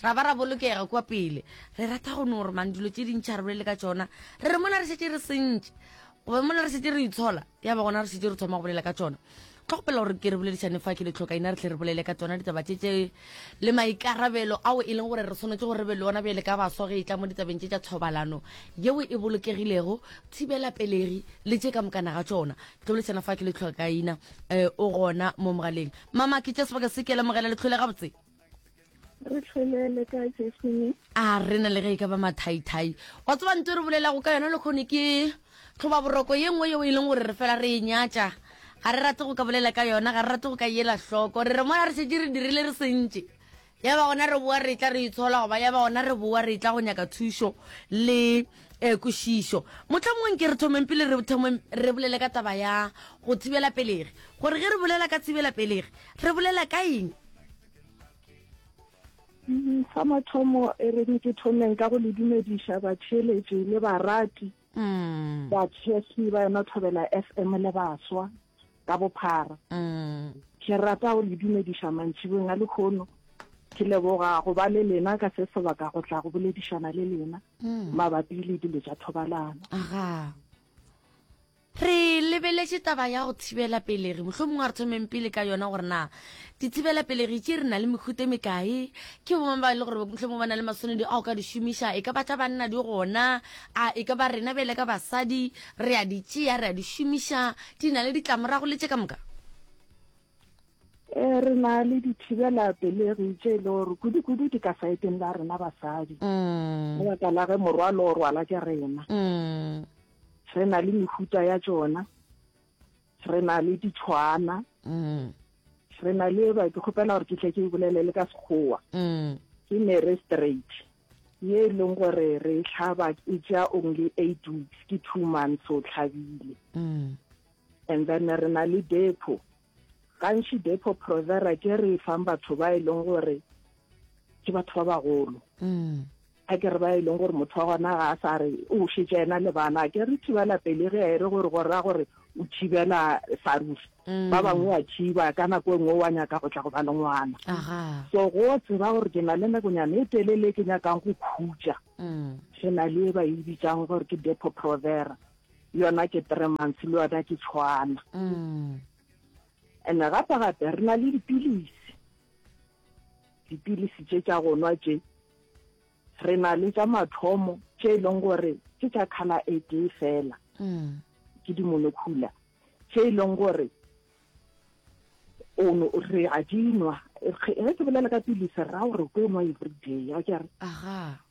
Ra ba ra bolokega kua pele. Re rata go no re mang dilo tše dintši a re bolele ka tšona. Re re mola re šetše re sentše, goba mola re šetše re itshola, ya ba gona re šetše re thoma go bolela ka tšona. Tlo kgopela gore ke re boledišane fa ke le tlhoka ina re tle re bolele ka tsona ditaba tše tše le maikarabelo ao e leng gore re swanetše gore re be le ona bjale ka baswa ge e tla mo ditabeng tše tša thobalano yeo e bolokegilego, thibelapelegi le tše ka mokana ga tšona. Ke tlo boledišana fa ke le tlhoka ina um o gona mo mogaleng. Mama, ke tšea sebaka se ke lemogela le tlhole gabotse. re tlholele ka jesone a rena le ge e ka ba mathaithai wa tseba nto re bolelago ka yona le kgone ke tlhoba boroko ye nngwe yeo e leng gore re fela re e nyatša ga re rate go ka bolela ka yona ga re rate go ka ela hloko re re mola re šetse re dirile re sentše ya ba gona re boa re tla re itshola goba ya ba gona re boa re tla go nyaka thušo le um kwešišo motlhamongweng ke re thomeng pele re thomeng re bolele ka taba ya go thibela pelegi gore ge re bolela ka thibela pelegi re bolela ka eng Mm, sa mathomo e re ke thomeng ka go le dumediša batheeletši le barati mm. bathefi ba yona thobela f m le baswa ka bophara mm. ke rata go le dumediša mantšhibong a lekgono ke leboga go ba le lena ka se sebaka go tla go boledišana le lena mabapi le dilo tša thobalano Re lebeletše taba ya go thibela pelegi. Mohlomongwe a re thomeng pele ka yona gore na dithibela pelegi tše re na le mehuta e mekae, ke bomang ba e le gore mohlomongwe ba na le maswanedi a o ka di šomiša, e ka ba tša banna di gona, a e ka ba rena bele ka basadi re a di tšea, re a di šomiša, di na le ditlamorago le tše ka moka? Eh, re na le dithibela pelegi tše e le gore kudu-kudu di ka saeteng la rena basadi, mm. lebaka la ge morwalo o rwala ke rena. Mm. re na le mehuta ya tsona re na le ditshwana mm. re na le ba ke kgopela gore ke tle ke e bolele le ka sekgowa mm. ke mere straight ye e leng gore re e tlhaba e ja only eight weeks ke two months o tlhabile mm. and then re na le depo Gantši Depo-Provera ke re e fang batho ba e leng gore ke batho ba bagolo. A ke re ba e leng gore motho wa gona ga a sa re o šetše ena le bana. A ke re thibela pelegi a e re gore go raya gore o thibela sa ruri. Ba bangwe wa thiba ka nako e nngwe wa nyaka go tla go ba le ngwana. So go tseba gore ke na le nakonyana e telele e ke nyakang go khutša, re na le e ba e bitsang gore ke Depo-Provera. yona ke three months le yona ke tshwana and-e gape gape re na le dipilisi dipilisi tše tša gonwa tše re na le tša mathomo tše e leng gore ke tša kgala e tee fela ke dimonokhula tše e leng gore ono re a dinwa ge ke bolela ka pilisi ra gore ko nwa everyday a kere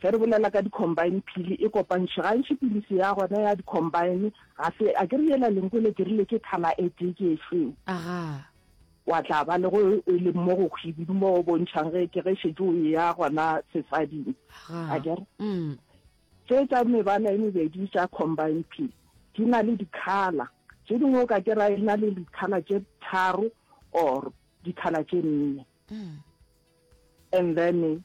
Ge re bolela ka di-combine phili e kopantšhwe, gantši piliso ya gona ya di-combine ga se, akere yela lenko le dirile ke thala e tee, ke e feo? Agaa. Wa tla ba le go e leng mo go hwibidu mo o bontšhang ge ke ge šetše o eya gona sesading. Agaa. Akere? Mm. Tše tša mebala e mebedi tša combine phili di na le di-colour. Tše dingwe o ka kera e na le di-colour tše tharo or di-colour tše nne. Mm. And then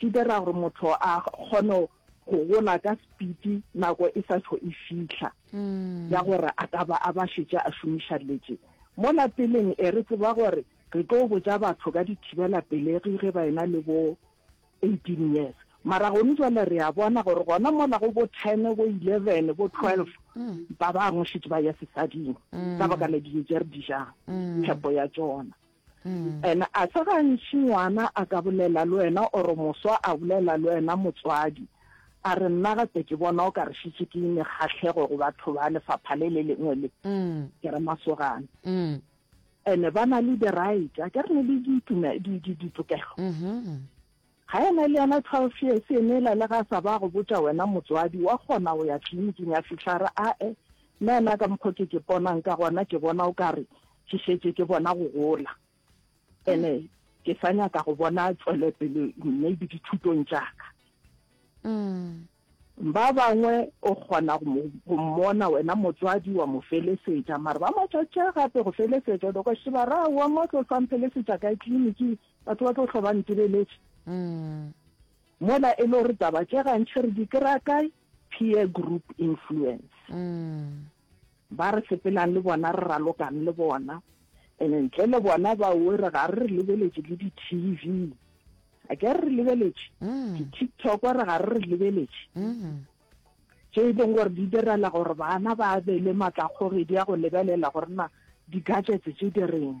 Di dira gore motho a kgone go gola ka spiti nako e sa tšho e fihla ya gore a ka ba a ba šetše a šomiša letše. Mo lapeleng e re tseba gore re tlo botša batho ka dithibela pelegi ge ba ena le bo 18 years. Mara gone jwale re a bona gore gona mola go bo 10, bo 11, bo 12 ba bangwe šetše ba ya sesading ka baka la dijo tše re di jang, phepo ya tšona. And a se gantši ngwana a ka bolela le wena or moswa a bolela le wena motswadi a re nna gape ke bona o ka re šitše ke ime kgahlego go batho ba lefapha le le lengwe le ke re masogana and ba na le di-right a ke re ne le ditokelo Ga e na le yona twelve years e mela le ga sa ba go botša wena motswadi wa kgona go ya tliliniking a fihla a re ae nnaena ka mokgwa ke ke ponang ka gona ke bona o ka re ke šetše ke bona go gola ene ke sa nyaka go bona tswelepele maybe dithutong tša ka. Ba bangwe o kgona go mo, go mmona wena motswadi wa mo felesetša, mara ba mo tšatša gape go felesetša, o be o kwa šeba ra wa mo tlo sa mphelesetša kae tliniki, batho ba tlo hlwa ba ntibeletše. Mm. Mola e le gore taba tše gantši re di kry-a kae? Peer group influence. Mm. Ba re sepelang le bona re ralokang le bona and ntle le bona ba were ga re re lebeletše le di-tv a ke re re lebeletše mm. di-tiktok re ga re re lebeletše mm-hmm. tše e leng gore di direla gore bana ba be le maatlakgogedi ya go lebelela gore na di-gadgets tše di reng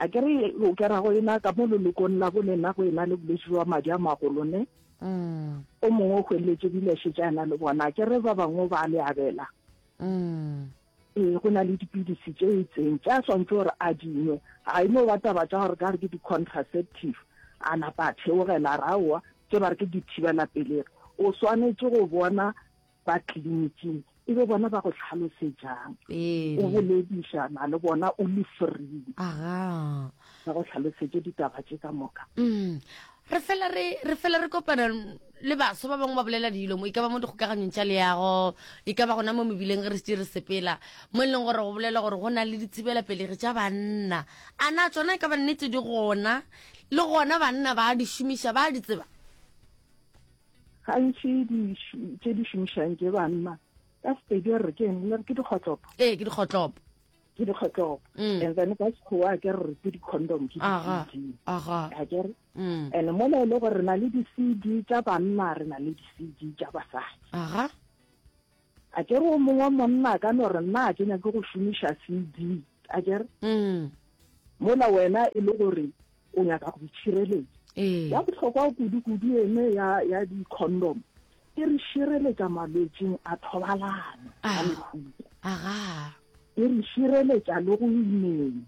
a ke re o kera go ena ka mo lelokong la bone na go ena le bolwetse jwa madi a magolo ne mm. o mongwe o hweletse dileshe tša ena le bona a ke re ba bangwe ba le abela mm. ee go na le dipilisi tše itseng tša swantse gore a dingwe ga e no ba taba tša gore ka re ke di-contraceptive a napa a theogela raowa tse ba re ke dithibela pelego o swanetse go bona ba kliniking e be bona ba go tlhalosetšang, o boledišana le bona o le free, ba go tlhalosetše ditaba tše ka moka. Mm. re fela re re fela re kopana le baso ba bangwe ba bolela dilo mo e ka ba mo dikgokaganyong tša leago e ka ba gona mo mebileng re se re sepela mo e leng gore go bolela gore go na le dithibelapelegi tša banna a na tsona e ka ba nnete di gona le gona banna ba di šomiša ba di tseba Gantši di tše di šomišang ke banna ka sepedi re ke eng le re ke dikgotlopo ee ke dikgotlopo ke dikgotlopo mm. and then ka sekgowa ke re ke di-condom ke di-cd akere mm. and mola e le gore re na le di-cd tša banna re na le di-cd tša basadi A ke re o mongwe monna a ka no re nna a ke nyake go šomiša CD, a ke re? Mola wena e le gore o nyaka go itšhireletša. Ya bohlokwa kudu-kudu ene ya, ya di-condom e re šireletša malwetšing a thobalano a mehuta. E re šireletša le go imeng.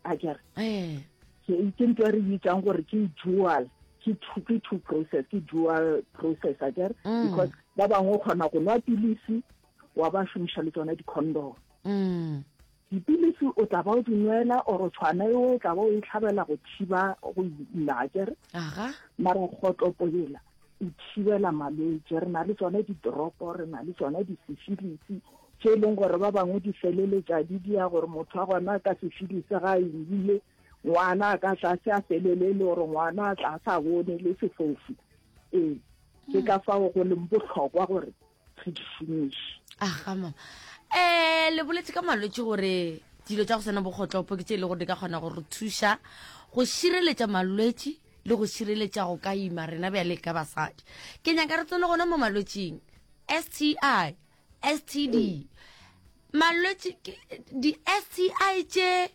a kere eh. ke nto re bitsang gore ke dual ke two ke two process ke dual process a kere mm. because ba bangwe o kgona go nwa pilisi wa ba šomiša le tsona di-condom mm. dipilisi o tla ba o di nwela oro tshwana eo o tla ba o e tlhabela go thiba go ila a kere mara kgotlopolela go thibela malwetši re na le tsone didoropo re na le tsone disefilisi tše e leng gore ba bangwe di feleletša di dia gore motho a gona ka sefilisi ga a ile ngwana a ka tla se a felele e le gore ngwana a tla sa bone le sefofu ee ke ka fao go leng bohlokwa gore ge di finiše aga mama um le boletse ka malwetse gore dilo tsa go sena bokgotlopo ke tse e le gore di ka kgona go re thuša go šireletša malwetse le go šireletša go ka ima rena bjale ka basadi ke nyaka re tsone gona mo malwetseng sti std malwetse di-sti tše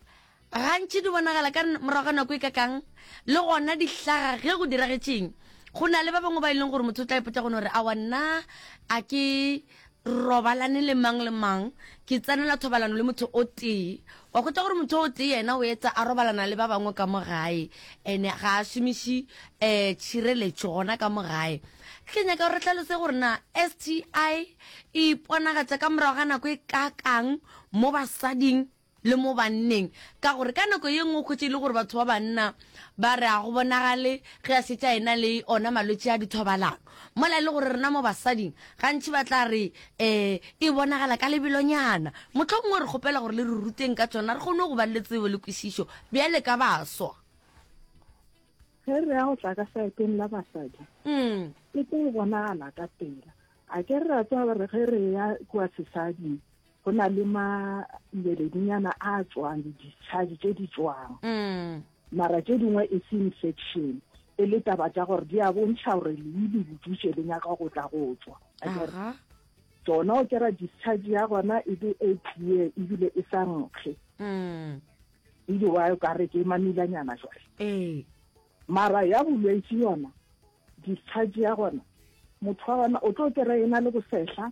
Gantši di bonagala ka morago ga nako e kakang, le gona di hlaga ge go diragetšeng. Go na le ba bangwe ba e leng gore motho o tla ipotša gona gore, Awa nna a ke robalane le mang le mang, ke tsenela thobalano le motho o tee. Wa hwetša gore motho o tee yena o etsa a robalana le ba bangwe ka mo gae, and-e ga a šomiše um tšhireletšo gona ka mo gae. Ke nyaka gore re hlalose gore na S_T_I e iponagatša ka morago ga nako e kakang mo basading le mo banneng, ka gore ka nako ye nngwe o khwetše e le gore batho ba banna ba re a go bonagale ge a šetše a ena le ona malwetše a dithobalano, mola e le gore rena mo basading gantši ba tla re um e bonagala ka lebelonyana. Mohlomongwe re kgopela gore le re ruteng ka tšona re kgone go ba le tsebo le kwešišo bjale ka baswa. Ge re ya go tla ka saeteng la basadi, mm. e tlo bonagala ka pela. A ke re ra tswa re ge re ya kua sesading go na le malweledinyana a tswang le discharge tše di tswang mm. mara tše dingwe e se infection e le taba tša gore di a bontšha gore lei le bodutše le nyaka go tla go tswa tsona o kera discharge ya gona e be e clear ebile e sa nkge mm. ile wa o kare ke mamilanyana jwale ee. mara ya bolwetse yona discharge ya gona motho wa gona o tlo kera e na le bosehla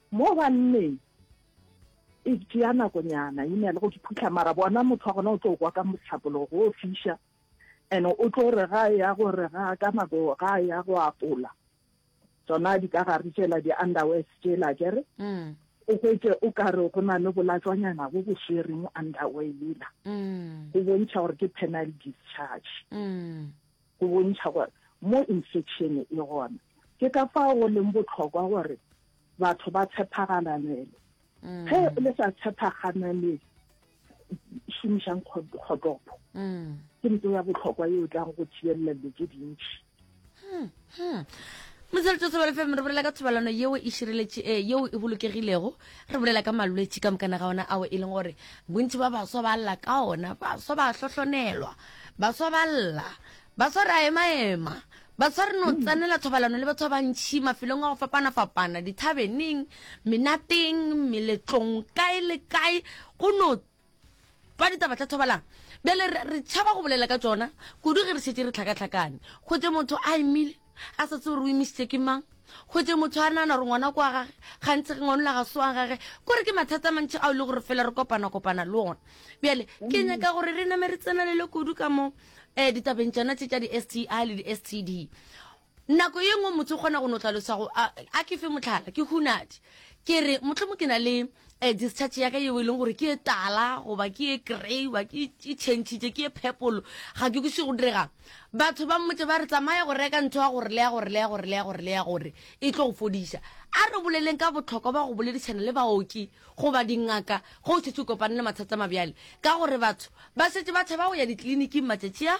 Mo banneng e tšea nakonyana e na le go di phuhla, mara bona motho wa gona o tlo kwa ka mohlapologo o fiša and o tlo re ga ya go re ga ka nako ga ya go apola tsona di ka gare tšela di underwear tšela kere mm. o hwetse o ka re go na le bolatswanyana bo bo swere mo underwear lela mm. go bontšha gore ke penal discharge mm. go bontšha gore mo infection e gona. Ke ka fao go leng bohlokwa gore batho ba tshephagalanele. Ge mm. le sa tshephagananele šomišang kgotopo mm. ke ntho ya bohlokwa e o tlang go thibelela dilo tse dintšhi hmm, hmm. motsweletso sebele fm re bolela ka thobalano yeo e šireletše e yeo e bolokegilego re bolela ka malwetši ka mokana ga ona ao e leng gore bontši ba baswa ba lla ka ona baswa ba hlohlonelwa Baswa ba lla. Baswa re a emaema. Baswa re no tsenela thobalano le batho ba bantšhi mafelong a go fapana-fapana, dithabeneng, menateng, meletlong, kae le kae go no twa ditaba tša thobalano. Bjale re tšhaba go bolela ka tšona kudu ge re šetše re tlhakatlhakane gotše motho a emile. A sa tsebe gore o imišitše ke mang. Hwetše motho a nagana gore ngwana kwa gage, gantši ge ngwanola ga se wa gage, kore ke mathata a mantši ao e le gore fela re kopana-kopana le ona. Bjale, ke nyaka gore re name re tsenelele kudu ka mo um ditabeng tšona tše tša di-STI le di-STD. Nako ye nngwe motho o kgona go no tlaloša go, a ke fe mohlala, ke hunadi, ke re mohlomong ke na le Eh, discharge ya ka yeo e leng gore ke e tala goba ke e grey ba ke e changitše ke e phepolo ga ke kuse go direga batho ba mmotse ba re tsamaya go reka ntho ya gore le ya gore le ya gore le ya gore le ya gore e tlo go fodiša a re boleleng ka botlhokwa ba go boledišana le baoki goba dingaka go setse o kopane le mathata mabjale ka gore batho ba setse ba tshaba go ya ditleliniking matšatši a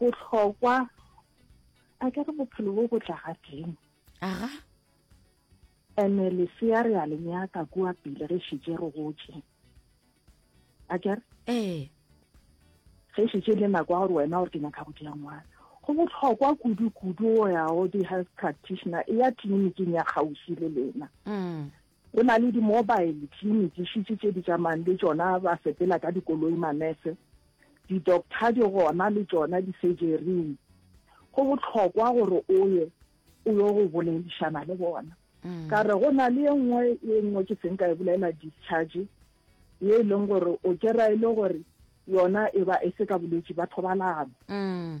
bohlokwa a ke re bophelo bo bo tla gadimo aga ene lesea re a le nyaka kua pele re šitše re gotše a ke re ee ge šitše le nako ya gore wena gore ke nyaka go dia ngwana go bohlokwa kudu-kudu o ya go di-health practitioner e ya tleliniking ya kgauswi le lena mm. Go na le di-mobile clinic šitše tše di tšamayang le tšona ba sepela ka dikoloi manese, di-doctor di gona le tšona di-surgery-ing. Go bohlokwa gore o ye o yo go boledišana le bona. Mm. Ka re go na le e nngwe e nngwe ke seng ka e bolela discharge ye e leng gore o kera e le gore yona e ba e se ka bolwetši ba thobalano. Mm.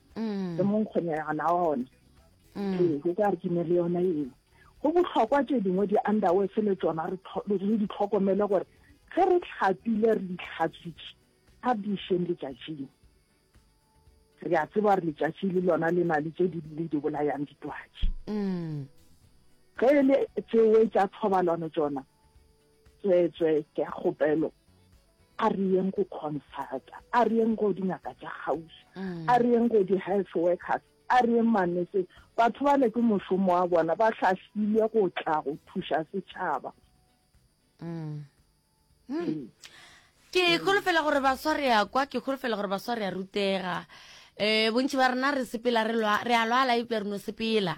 mm. e mong kgonegana ona mm. ee go ka re ke ne le yona eo go botlhokwa tse dingwe di-underwords le tsona re di tlhokomele gore ge re tlhapile re ditlhatswitše ga di šeng letšatšing re a tseba gore letšatši le lona le na le tse di le di bolayang ditwatši mm. ge e le tsewe tša thobalano tsona Tsweetswee, ke a kgopelo, a re yeng go consulta, a re yeng go dingaka tša kgauswi, mm. a re yeng go di-health workers, a re yeng manese. Batho ba le ke mošomo wa bona, ba hlahlilwe go tla go thuša setšhaba. Mm. Mm. Ke holofela gore baswa re a kwa, ke holofela gore baswa re a rutega. Eh, bontši ba rena re sepela re lwa, re a lwala eupša re no sepela.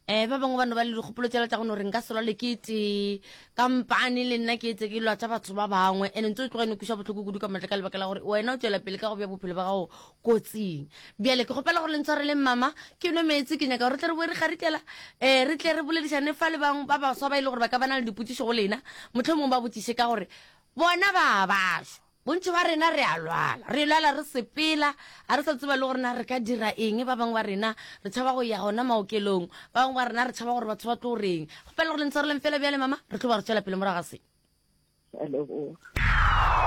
Eh, ba bangwe ba no ba le dikgopolo tšela tša go no re nka se lwale ke tee, kampane le nna ke etse ke lwatša batho ba bangwe. And ntse o tloga e no kweša bohloko kudu ka matla ka lebaka la gore wena o tšwela pele ka go bja bophelo ba gago kotsing. Bjale ke kgopela gore le ntshwareleng mama, ke nwe meetse, ke nyaka gore re tle re boe re kgarikela, eh, re tle re boledišane fa le bang ba baswa ba e le gore ba ka ba na le dipotšišo go lena, mohlomong ba botšiše ka gore Bona ba a ba shwa. Bontši bja rena re a lwala. Re lwala re sepela, ga re sa tseba le gore na re ka dira eng. Ba bangwe ba rena re tšhaba go ya gona maokelong. Ba bangwe ba rena re tšhaba gore batho ba tlo re eng. Kgopela gore le ntshwareleng fela bjale, Mama, re tlo ba re tšwela pele morago ga se. Ke a leboga.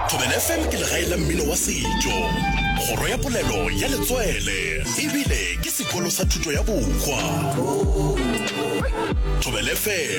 Thobela FM ke legae la mmino wa setšo, kgoro ya polelo ya letswele e bile ke sekolo sa thuto ya bohwa. Thobela FM.